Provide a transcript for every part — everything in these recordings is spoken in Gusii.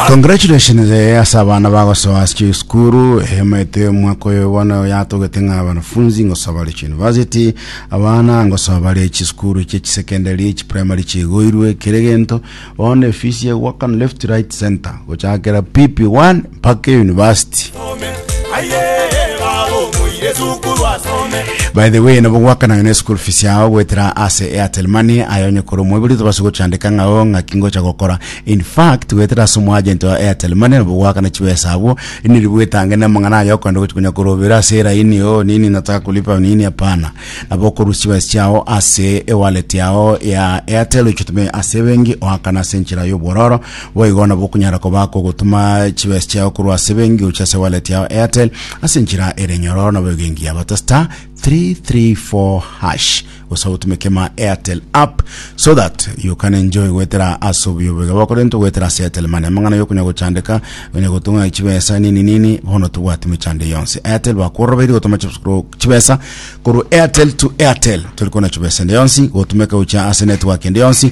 Congratulations eh, ase abana bagosoa ase chisukuru emete omwaka oyo bono oyatogete ng'a abanafunzi ngosoa bare chiyunivasiti abana ngosoa bare chisukuru chie chisekendari chiprimary chigoirwe kere gento bono efisi egwakana left right center gochakera pp1 mpaka eyunivasiti by the way nabo gwakana yone school fees yao gwetera ase airtel money aye onye kore omweburi tobase gochandeka ng'ao ng'aki ngocha gokora in fact gwetera ase omoagent wa airtel money nabo gwakana chibesa abwo niri bwetange na amang'ana aye okonde gochi konya korobera ase eraini o nini nataka kulipa nini hapana nabo okorusia chibesa chiao ase ewallet yao ya airtel ochitumie ase ebenki oakana ase enchera y'obwororo Boigo nabwo okonyara koba akogotuma chibesa chiao korwa ase ebenki gochia ase wallet yao Airtel ase enchera ere nyororo nabo egenki yabo ta star 334 hash gose otume kema Airtel app so that you can enjoy gwetera ase obuya obwega bwako rento gwetera ase Airtel Money amang'ana yokonya gochandeka onya gotung'a chibesa nini nini bono tobwati mechando yonsi Airtel bakworoberi gotuma chibesa korwa- chibesa korwa Airtel to Airtel tori kona chibesa ende yonsi gotumeka gochia ase network ende yonsi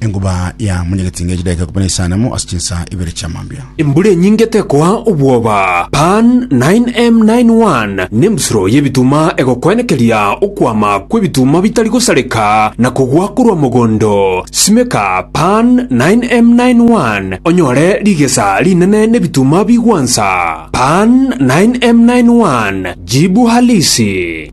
Enguba ya monyagetinga ya chidaeka kobua nesanamu ase chinsa ibere chia mambia. Embura enyinge tekoa obwoba, Pan 9M91 nembusuro y'ebituma egokwenekeria okwama kw'ebituma bitari gosareka na kogwa korwa mogondo. Simeka Pan 9M91 onyore rigesa rinene n'ebituma bigwansa. Pan 9M91 Jibu Halisi.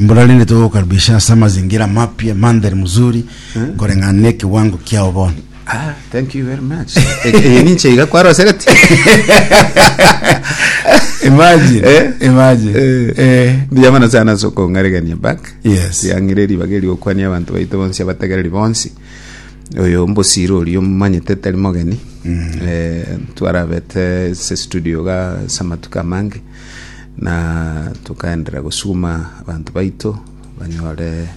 Mbora rende togokukaribisha ase amazingira amapya, mandhari mzuri, koreng'ana na ekewango kiao bono. Ah, thank you very much. Eh, eh, ninche iga kwarosegeti. Imagine, Eh? imagine. Eh. Eh. Ndiyamana sana ase okong'aregania back. Yes. Tiang'ire ribaga eri gokwania abanto baito bonsi abategereri bonsi. Oyo mbosiro oria omanyete tari mogeni. Eh, twarabete ase studio ga ase amatuko amange. Na tokaenderera gosukuma abanto baito banyore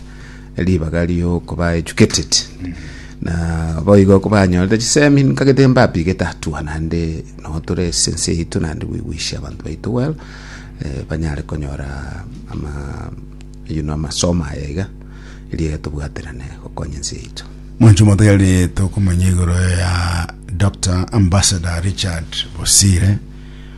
ribaga ri'okoba educated na boigo kobanyorete chisemi nkagete mbapigete hatua naende nabo tore ase ense yaito naende goigwisia abanto baito well eh, banyare konyora ama you know, amasomo aya iga eria tobwaterane gokonya ense yaito mwancho motari tokomanya igoro ya dr ambassador richard bosire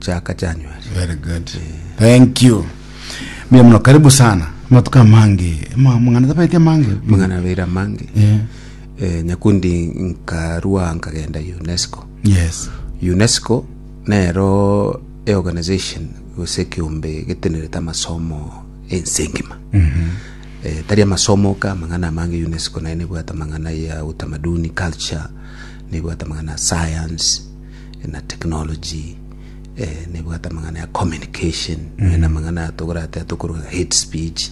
chaka January. Very good. Thank you. Mbuya muno karibu sana. Amatuko amange. Ama- Mang'ana tabaeti amange. Mang'ana beira mange. Eh, Eh, nyakundi nkarua nkagenda UNESCO. Yes. UNESCO nero e organization gose ekiombe getenerete amasomo ense engima. Eh, tari amasomo ka mang'ana amange UNESCO naye nebwate amang'ana ya utamaduni culture nebwate amang'ana ya science na technology, eh, nebwate amang'ana ya communication, eh, na amang'ana ya tokorate atokorwa hate speech,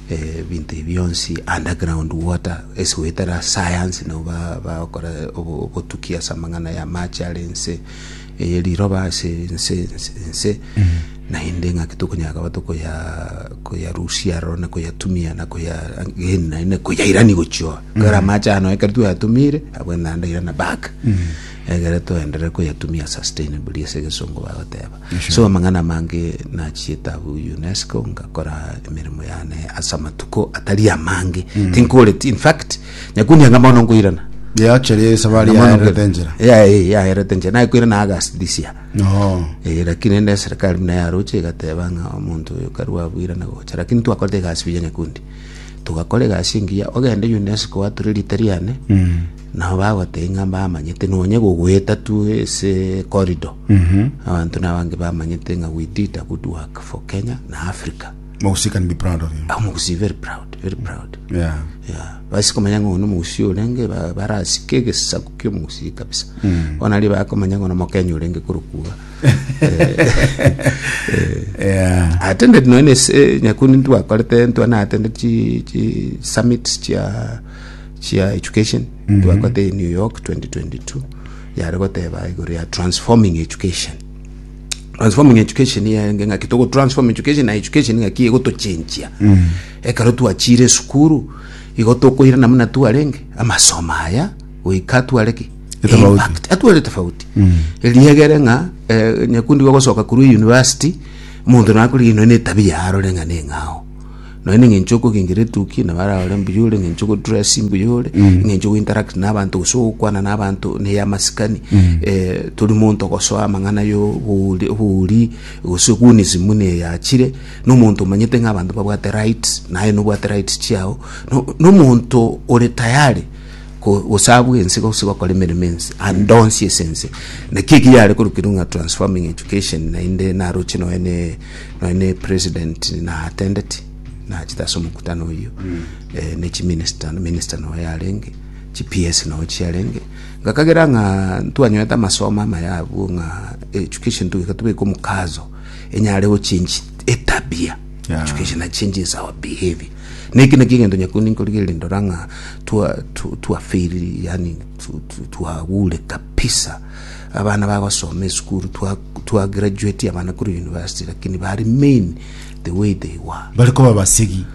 eh, ebinto ebi bionsi, underground water, ase goetera science nabo ba- bakora obo- obotuki ase amang'ana ya amache are ense, eye riroba ase ense ense ense, naende ng'aki tokonyara koba tokoya koyarusia aroro na koyatumia na koya again naende koyairani gochia oo. Ekero amache ano ekero twayatumire, abwene naende airana back. Egere toenderere koyatumia sustainably ase egesongo bagoteba. So amang'ana amange nachiete abwo UNESCO ngakora emeremo yane ase amatuko atari amange. Mm. Tinkoreti in fact nyakunia ng'a mono nkoirana. Yachere esabari yaerete enchera. Ya eh yaerete enchera naye koirana August this year. No. Eh lakini ende serikali muna yaroche igateba ng'a omonto oyo karwa abwirana gocha lakini twakorete egasi buya nyakundi. Tugakora egasi engiya ogende UNESCO wature rita riane. Mm. Nao bagoteba ng'a mbamanyete nonya gogoeta tu ase corridor. Abanto nabange bamanyete ng'a we did a good work for Kenya na Africa. Mogusi can be proud of you. Ah, Omogusi very proud, very proud. Yeah. Yeah. Basi komanya ng'a ono Omogusi orenge ba- barasike egesaku kia Omogusi kabisa. Bono aria bakomanya ng'a ono Omokenya orenge korokwa. Yeah. Attended nonya ase nyakundi ntwakorete ntwa na attended chi chi summits chia chia education mm-hmm. twakote in new york 2022 yare goteba igoro ya transforming education transforming education yaenge ng'aki togo transform education na education ng'aki egotochenchia mm. ekero twachire esukuru igo tokoirana muna twarenge amasomo aya goika twareki impact atware tofauti mm. eliegere ng'a eh, nyakundi gogosoka kurwa university omonto nakorigino ne tabia arore ng'a neng'ao Nonya neng'encho yokogenchera etuki nabo ara ore mbuya ore, eng'encho yogodress mbuya ore, eng'encho yogointeract na abanto gose ogokwana na abanto na ey'amasikani eh, tori monto gosoa amang'ana y'obouri obouri gose gunism buna eye yachire, na omonto omanyete ng'a abanto babwate rights naye nobwate rights chiao, no na omonto ore tayari ko- gosabwa ense gose gokora emeremo ense andonsi ase ense. Naki ekio yare korokerwa ng'a transforming education naende naroche nonya na. Nonya president na attended nachete ase omokutano oyio eh, ne chiminister minister noyo yarenge chi PS noyo chiarenge ngakagera ng'a ntwanyorete amasomo amaya abwo ng'a education tugeka tubeka omokazo enyare gochange etabia Yeah. education na changes our behavior neki naki egento nyakundi nkorigereria ndora ng'a twa tu- twafeiri yani tu- tu- twagure kabisa abana bagosoma esukuru twa Twa graduatia abana korwa university lakini bare main the way they were. Bari koba basegi.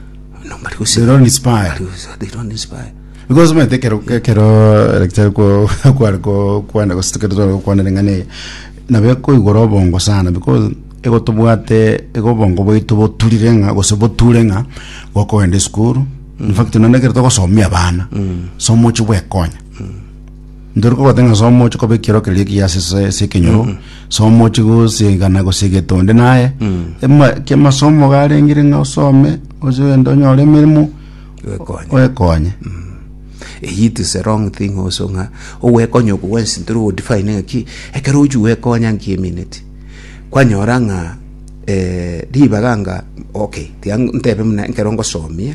No, bari gose- They don't inspire. bari gose- they don't inspire. Because omanyete ekero ekero daktari ko kware ko kwana gose ekero tware gokwana ring'ana eye nabo ekoigora obongo sana because egotobwate igo obongo bwaito boturire ng'a gose boture ng'a gokogenda esukuru in fact naende ekero togosomia abana somo ochi bwekonya Ntori kogwata ng'a somochi koba ekioro keria ekiya ase ase ase ekenyoro somochi gosigana gose egete onde naye ema- ki amasomo iga arengire ng'a osome oche ogende onyore emeremo Gwekonye. oekonye Eyio it is a wrong thing also ng'a ogwekonya oko gwensi ntori ogodefine ng'a ki ekero ochia gwekonya nki emineti kwanyora ng'a eh, ribaga anga okay tiga ntebe buna ekero ngosomia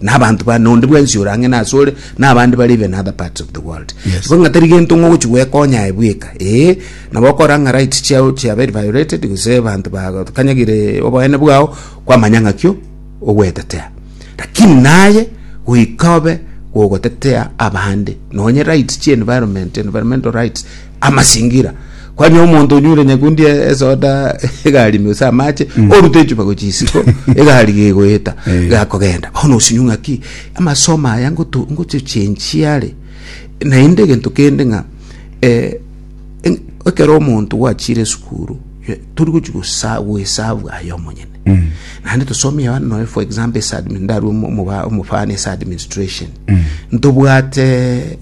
na abanto ba nonde bwensi ore ang'e nase ore na abande bare even other parts of the world Yes. Igo ng'a tari gento ng'a ogochi gwekonya aye bweka ee nabo okora ng'a right chiao chiaberi violated gose abanto bakanyagire oboene bwao kwamanya ng'a kio ogwetetea lakini naye goika obe gogotetea abande nonye right chi environment environmental rights amasingira kwani omonto onyure nyakundi e- esoda egari ime gose amache orute echupa gochia isiko egari gegoeta Eh. gakogenda bono osinyu ng'aki amasomo aya ngoto- ngochechenchie are naende egento kende ng'a eh, en- ekero omonto gwachire esukuru eh, tori gochia gosa- goesavu aye omonyene naende tosomie abana nonya for example ase admin- ndarue omo- omoba- omofano ase administration ntobwate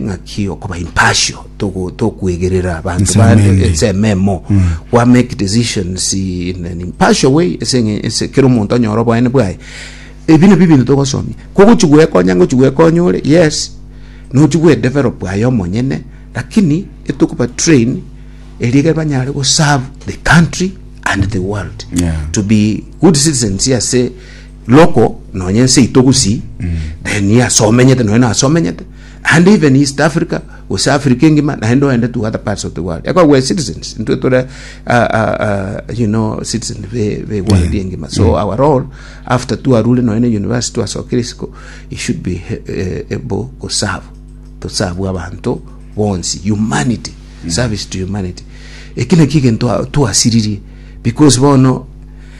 ng'aki okoba impartial togo- tokwegerera abanto Inse bande emende. ense ememo kwa make decisions in an impartial way ase eng'e- ase kera omonto anyore oboene bwaye ebi nabio ebinto togosomia kogochi gwekonya ngochi gwekonya ore yes nochi gwedevelop aye omonyene lakini etokoba train erio ekero banyare goserve the country and the world Yeah. to be good citizens ase Local nonye ense yaito gusii then ase omenyete nonye nase omenyete and even East Africa gose Africa engima naende oende to other parts of the world ekogera we're citizens intwe tore ah, ah, ah, you know citizen be, be world yeah. engima so our role after twarure nonye ne university twasokire isiko it should be eh, able to serve to serve abantu bonsi humanity service to humanity eki naki egento twasiririe because bono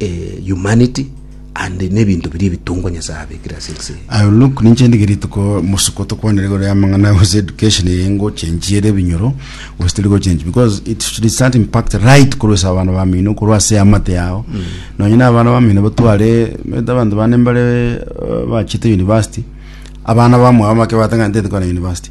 eh, humanity and nebinto biria ebitongwa Nyasae abekire ase ense eye. I will look ninche ndige rituko musuko tokwanere igoro ya amang'ana gose education eye ngo change ere ebinyoro gose teri go change because it should start impact right korwa ase abana bamino korwa ase amate yao nonye na abana bamino batware meta abanto bane mbare eh, bachete university abana bamwabo make batang'anete kwana university